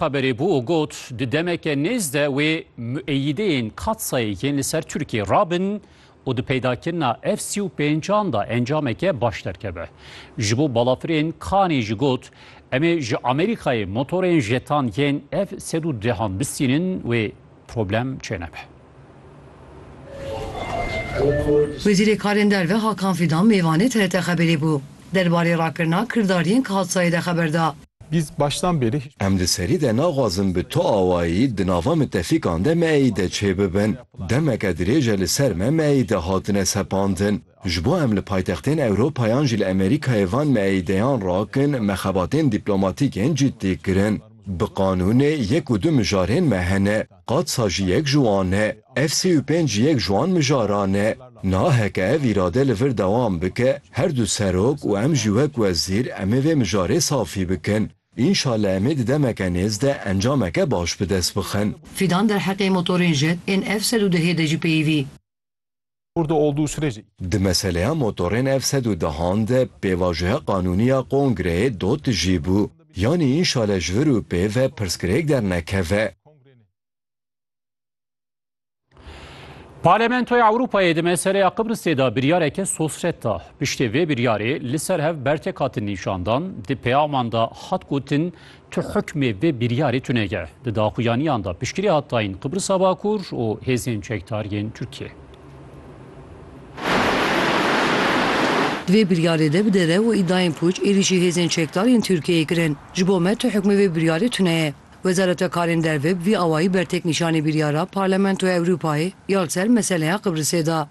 Taberê bû û got, di demeke nêz de wê mueyideyên Katsayê yên li ser Tirkiyê rabin û di peydakirina ev sî û pêncan de encameke baş derkeve. Ji bo balafirên Kanê jî got, Em ê ji Amerîkayê motorên jetan yên ev sed û dehan bistînin wê problem çênebe. Wezîrê Karên Derve Hakan Fidan mêvanê TRT Xebêrê bû. Derbarê rakirina kirdariyên Kadsayê de xeber da. Em di serî de naxwazin bi tu awayî di nava mitefîkan de me êyî de çêbibin. Demeke dirêj e li ser me me êyî de hatine sepandin. Ji bo em li paytextên Ewropa yan jî li Amerîkayê van me êyî de yan rakin me xebatên dîplomatîk yên cîddî kirin. Bi qanûnê yek û du mijarên me hene. Qad sa jî yek ji wan e. Ev sî û pênc ji yek ji wan mijaran e. Niha heke ev îrade li vir dewam bike, her du serok û em jî wek wezîr em ê vê mijarê safî bikin. Înşallah em ê di demeke nêz de encameke baş bi dest bixin. Fidan derheqê motorên jet ên F sed û dehê de jî peyivî. Burada olduğu sürece Di meseleya motorên ev sed û dehan de pêvajoya qanûnî ya Kongreyê do tijî bû. Yanî înşale ji vir û pê ve pirsgirêk dernekeve. Parlamentoya Ewropayê di meseleya Qibrisê de biryareke sosret da. Piştê vê biryarê li ser hev bertek hatin nîşandan, di peyaman de hat gotin Tu hukmê vê biryarê tunege. Di daxuyaniyan de piştgirî hat dayîn Qibrisa Bakur û hêzên çekdar yên Tirkiyeyê. Di vê biryarê de bi derew û îdayên pûç êrîşî hêzên çekdar yên Tirkiyeyê kirin. Ji bo me tu hukmê vê biryarê tuneye. Wezareta Karên Derve bi vî awayî bertêknîşanê biryara Parlamentoya Ewropayê ya li ser meseleya Qibrisê da.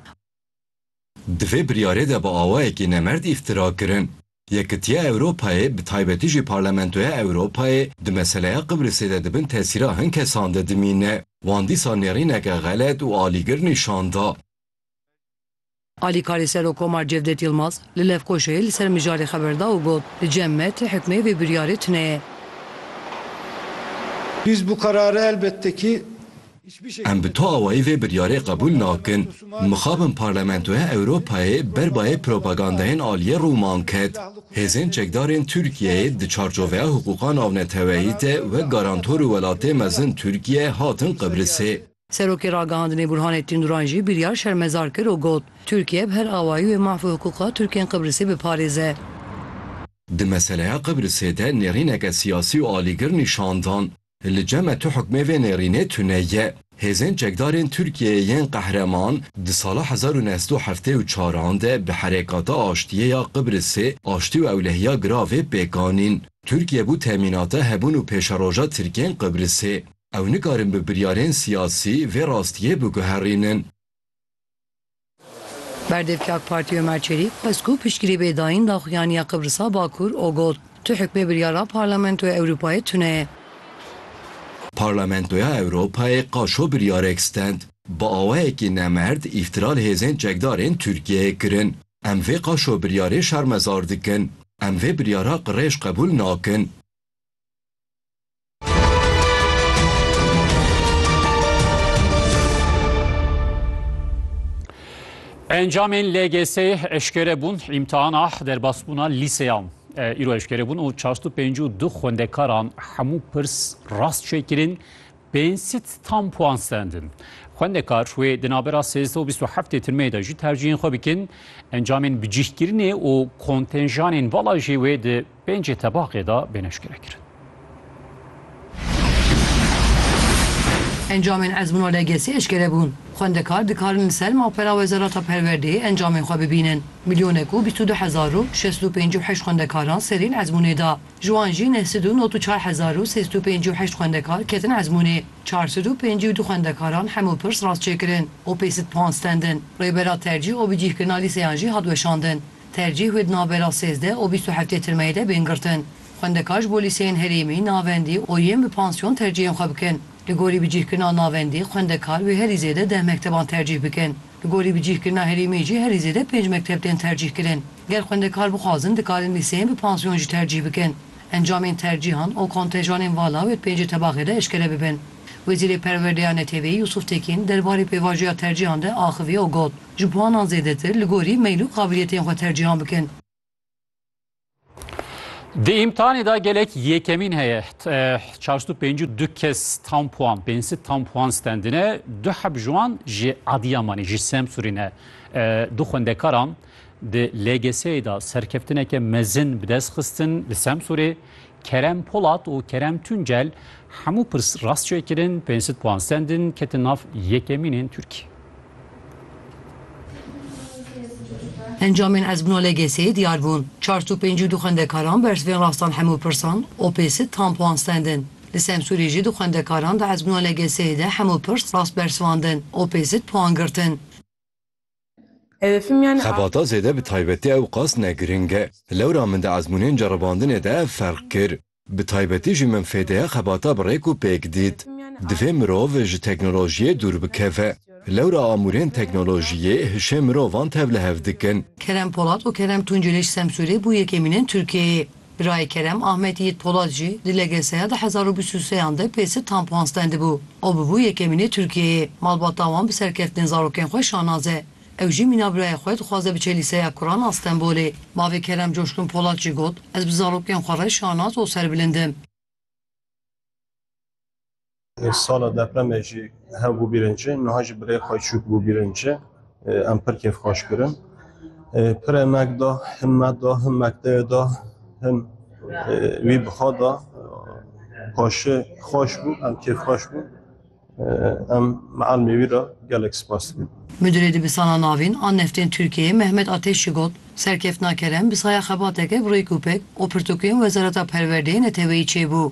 Di vê biryarê de bi awayekî nemerd îftira kirin. Yekitiya Ewropayê bi taybetî jî Parlamentoya Ewropayê di meseleya Qibrisê de di bin tesîra hin kesan de dimîne. Wan dîsa nêrîneke xelet û alîgir nîşan da. Alîkarê Serokkomar Cevdet Yilmaz li Lefkoşayê li ser mijarê xeber da û got, Li cem me tu hikmê vê biryarê tune ye. Biz bu kararı elbette ki Em bi tu awayî vê biryarê qebûl nakin. Mixabin Parlamentoya Ewropayê ber bayê propagandayên aliyê Rûman ket. Hêzên çekdarên Tirkiyeyê di çarçoveya hiqûqa navneteweyî de wek garantor û welatê mezin Tirkiye hatin Qibrisê. Serokê Ragihandinê Burhanê Tînduran jî biryar şermezar kir û got, Tirkiye bi her awayî wê mahv û hiqûqa Tirkên Qibrisê biparêze. Di meseleya Qibrisê de nêrîneke siyasî û alîgir nîşan dan. Li ceme tu hukmê vê nêrînê tune ye. Hêzên çekdarên Tirkiyeyê yên qehreman di sala hezar û neh sed û heftê û çar an de bi Herekata Aştiyê ya Qibrisê aştî û ewlehiya giravê pêk anîn. Tirkiye bû temînata hebûn û pêşeroja Tirkên Qibrisê. Ew nikarin bi biryarên siyasî vê rastiyê biguherînin. Berdevkê AK Partî Omer Çelîk xwest ku piştgirî bê dayîn daxuyaniya Qibrisa Bakur û got, Tu hukmê biryara Parlamentoya Ewropayê tune ye. Parlamentoya Ewropayê qaşo biryarek stend. Bi awayekî nemerd îftira li hêzên çekdarên Tirkiyeyê kirin. Em vê qaşo biryarê şermezar dikin. Em vê biryara qirêj qebûl nakin. Encamên LGS eşkere bûn îmtihana derbasbûna lîseyan îro eşkere bûn û çastu pêncû du xwendekaran hemû pirs rast çêkirin pênsit tam puan sendin. Xwendekar wê di navbera sêzdeh û bîst û heftê tirmeyê de jî tercihên xwe bikin encamên bicîhkirinê û kontenjanên vala jê wê di Pêncê tebaqê de bên eşkere kirin. Encamên ezmûna LGS'ê eşkere bûn. Xwendekar dikarin li ser mapera Wezareta Perwerdeyê encamên xwe bibînin. Milyonek û bîst û du hezar û şeş sed û pêncî û heşt xwendekaran serîn ezmûnê da. Ji wan jî neh sed û not û çar hezar û sê sed û pêncî û heşt xwendekar ketin ezmûnê. Çar sed û pêncî û du xwendekaran hemû pirs rastçêkirin û pê sed puan stendin. Rêbera tercîh û bicîhkirina lîseyan jî hat weşandin. Tercîh û di navbera sêzdeh û bîst û heftê tirmeyê de bên girtin. Xwendekar ji bo lîseyên herêmî, navendî û yên bi pansyon tercîhên xwe bikin. Li gorî bicîhkirina navendî, xwendekar wê herî zêde deh mekteban tercîh bikin. Li gorî bicîhkirina herêmî jî herî zêde pênc mekteb tên tercîhkirin. Ger xwendekar bixwazin dikarin lîseyên bi pansyon jî tercîh bikin. Encamên tercîhan û kontenjanên vala wê di pêncê tebaxê de eşkere bibin. Wezîrê Perwerdeya Neteweyî Yusuf Tekîn derbarê pêvajoya tercîhan de axivî û got, Ji puanan zêdetir li gorî meyl û qabiliyetên xwe tercîhan bikin. Di îmtihanê de gelek yekemîn heye. Çar sed û pêncî û du kes tam puan, pênc sed tam puan stendine. Du heb ji wan ji Adîyamanê, ji Semsûrê ne. Du xwendekaran di LGS'yê de serkeftineke mezin bi dest xistin li Semsûrê. Kerem Polat û Kerem Tuncel hemû pirs rast çêkirin, pênc sed puan sendin, ketin nav yekemînên Tirkiyê. Encamên Ezmûna LGS'ê diyar bûn. Çar sed û pêncî û du xwendekaran bersivên rastan hemû pirsan û pênc sed tam puan sendin. Li Semsûrê jî du xwendekaran di Ezmûna LGS'ê de hemû pirs rast bersivandin û pênc sed puan girtin. Xebata zêde bi taybetî ewqas ne giring e. Lewra min di ezmûnên ceribandinê de ev ferq kir. Bi taybetî jî min fêdeya xebata bi rêk û pêk dît. Divê mirov ji teknolojiyê dûr bikeve. Lewra amûrên teknolojiyê hişê mirovan tevlihev dikin. Kerem Polat û Kerem Tunceliş Semsûrê bû yekemînên Tirkiyeyê. Birayê Kerem Ahmet Yiğit Polat jî di LGS'ya di hezar û bîst û seyan de pêsit tam pans tendibû. O bûbû yekemînê Tirkiyeyê. Malbata wan bi serkeftinên zarokên xwe şanaz e. Ew jî mîna birayê xwe dixwaze biçe Lîseya Kuran a Stenbolê. Bavê Kerem Coşkun Polat jî got, Ez bi zarokên xwe re şanaz û serbilind im. Sala depremê jî hev bû bîrên ci, niha jî bi rê xwe çûk bû bîrên ci. Em pir kêf xweş kirin. Pirê me da, hin me da, hin mekteyê da, hin wî bi xwe da. Paşê xweş bû, em kêf xweş bû. Em Mealmê wî re gelek spas dikin. Midirê Dibistana Navîn a Neftên Tirkiyeyê Mehmet Ateş jî got, Serkeftina kerem bi saya xebateke bi rêk û pêk û pirtûkên Wezareta Perwerdeyê neteweyî çêbû.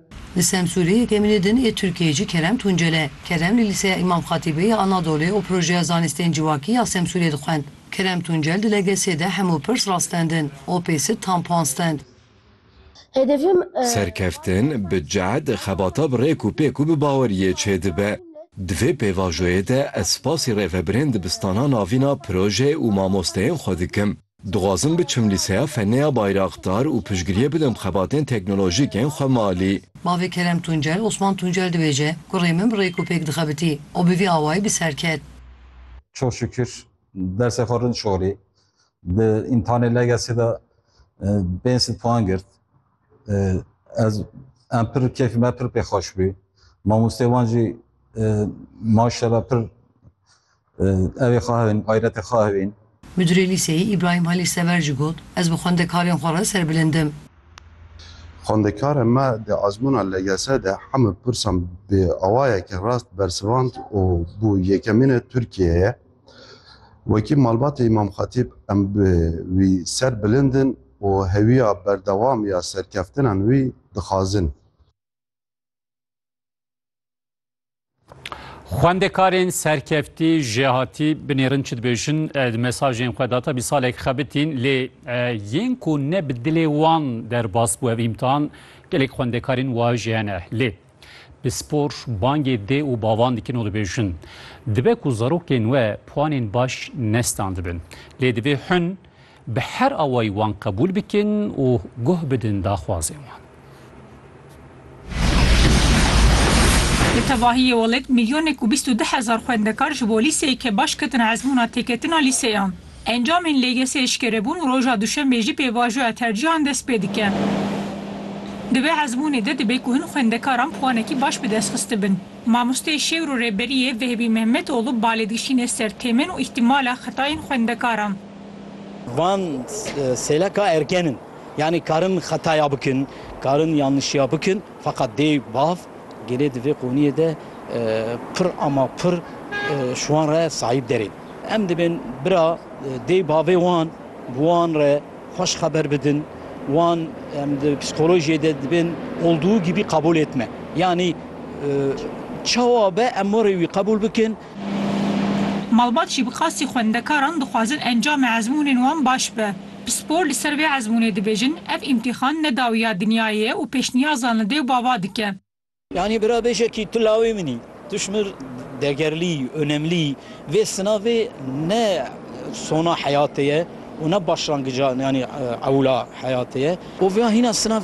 Li Semsûrê yekemînê din ê Tirkiyeyê jî Kerem Tuncel e. Kerem li Lîseya Îmam Xatîbê ya Anadolê û Projeya Zanistên Civakî ya Semsûrê dixwend. Kerem Tuncel di legesê de hemû pirs rastendin, opêsit tam pan stend. Serkeftin, bi cehd, xebata bi rêk û pêk û bi baweriyê çêdibe. Di vê pêvajoyê de ez spasî rêvebirên dibistanan avîna proje û mamosteyên xwe dikim. Dixwazim biçim lîseya Feneya Bayraktar û piştgiriyê bidim xebatên teknolojîk ên xwe malî. Bavê Kerem Tuncel, Osman Tuncel dibêje, Kurê min bi rêk û pêk dixebitî û bi vî awayî bi ser ket. Çok şükür dersê xwe rind şorî. Di îmtihanê LGS'ê de pênc sed puan girt. Ez em pir keyfê me pir pê xweş bû. Mamosteyê wan jî maşella pir Ew ê xahibin, xayretê xwe hebin. Midurê lîseyê Îbrahîm Halî Sever jî got, Ez bi xwendekarên xwe re serbilind im. Xwendekarên me di ezmûna LGS de hemû pirsan bi awayeke rast bersivand û bû yekemînê Tirkiyeyê. Wekî malbatê Îmam Xetîb em bi wî ser bilind in û hewiya berdewam ya serkeftinan wî dixwazin. Xwendekarên serkeftî jêhatî binêrin çi dibêjin di mesajên xwe data bî salek xebitîn lê yên ku ne bi dilê wan derbas bû ev îmtihan gelek xwendekarên wa jî hene lê bi spor bangê dê û bavan dikin û dibêjin dibe ku zarokên we puanên baş nestandibin lê divê hûn Bi her awayî wan qebûl bikin û guh bidin daxwazên wan. Di tevahiyê welêt milyonek û bîst û du hezar xwendekar ji bo lîseyeke baş ketin ezmûna têketina lîseyan. Encamên LGS'ê eşkerebûn û roja duşenbê jî pêvajoya tercîhan dest pê dike. Di vê ezmûnê de dibe ku hin xwendekaran puanekî baş bi dest xistibin. Mamosteyê Şêwr û Rêberiyê Vehbî Mehmetoglû balêdikişîne ser têmên û îhtîmala xetayên xwendekaran. Van sêleka erken in. Yanî karin xetaya bikin, karin yanlişiya bikin feqet dê bav gelê di vê qûniyê de pir ama pir ji wan re sahîb derên. Em dibin bira dê bavê wan bi wan re xweş xeber bidin. Wan em di psîkolojiyê de dibin olduğu gibi kabul etme. Yanî çawa be em warê wî qebûl bikin. Malbat jî bi qasî xwendekaran dixwazin encamê ezmûnên wan baş be. Pispor li ser vê ezmûnê dibêjin, ev îmtîxan ne dawiya dinyayê ye û pêşniyazan li dê û bava dike. Yanî bira bêje kî tu lawê min î. Tu ji min degerlî, onemlî. Vê sinavê ne sona heyatê ye û ne başlangija yanî ewla heyatê ye. Û vêya hîna sinav